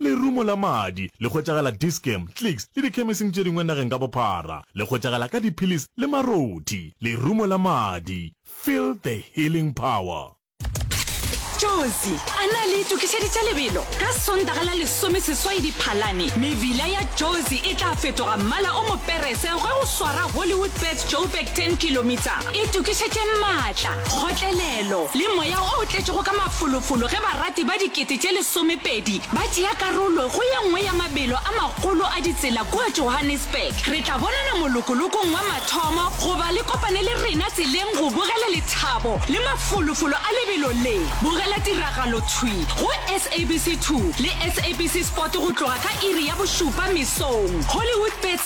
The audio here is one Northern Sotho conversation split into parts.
Lerumo la madi le hwetšagala Dischem, Clicks le dikhemesing tše dingwe nageng ka bophara. Le hwetšagala ka diphilisi le marothi. Lerumo la madi, feel the healing power. Jozi a na le itokišeditše lebelo. Ka Sontaga la lesomeseswai Diphalane, mebila ya Jozi e tla fetoga mmala o moperese ge go swara Hollywoodbets Joburg 10 Kilometre. Itokišetše maatla, kgotlelelo, le moya o tletšego ka mafolofolo ge barati ba dikete tše lesomepedi ba tšea karolo go ye nngwe ya mabelo a magolo a ditsela kua Johannesburg. Re tla bonana molokolokong wa mathomo goba le kopane le rena tseleng go bogela lethabo le mafolofolo a lebelo le. Bogela tiragalo thwi go SABC2 le SABC Sport go tloga ka iri ya bošupa mesong. Hollywoodbets.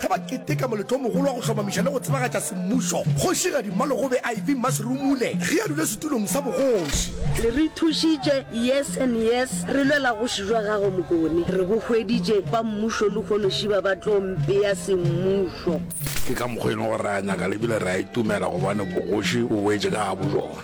Ge ba keteka moletlo o mogolo wa go hlomamiša le go tsebagatša semmušo, Kgošigadi Mmalogobe IV Mmasirumule ge a dule setulong sa bogoši. Le re thušitše yes and yes, re lwela goši jwa gago Mokone, re bo hweditše ba mmušo le kgonošiba ba tlo mpea semmušo. Ke ka mokgwa e leng gore re a nyaka le ebile re a itumela gobane bogoši bo boetše ka gabojona.